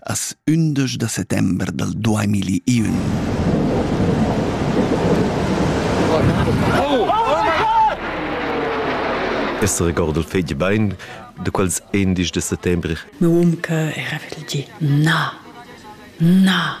As ündesch da settember dal duamilliun. Es regordo il fegl bain, de quels endisch de settembre. Meu um che era vegl di, na, na,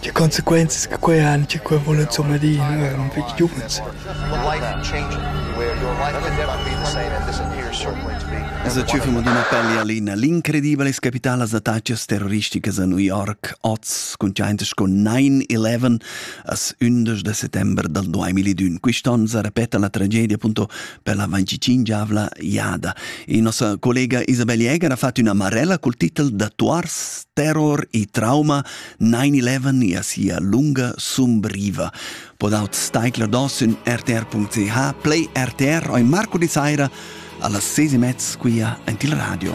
Tge consequenzas che quai han, tge quai vul insumma dir per ils giuvens. Es a Tschüfim d'una pelle alina l'incredibile capitala attaccas terroristicas a New York oz conscientes con 9-11 as 11 de settembre del 2001. Quist'on sa repeta la tragedia appunto per la 25-avla iada. E nostra collega Isabel Jäger ha fatto una marella col titolo Datuars, terror e trauma 9-11 e a sia lunga sumbriva. Podaut staicler dos in rtr.ch, play RTR oi Marco di Saira, alla ses e mezz quia ent il radio.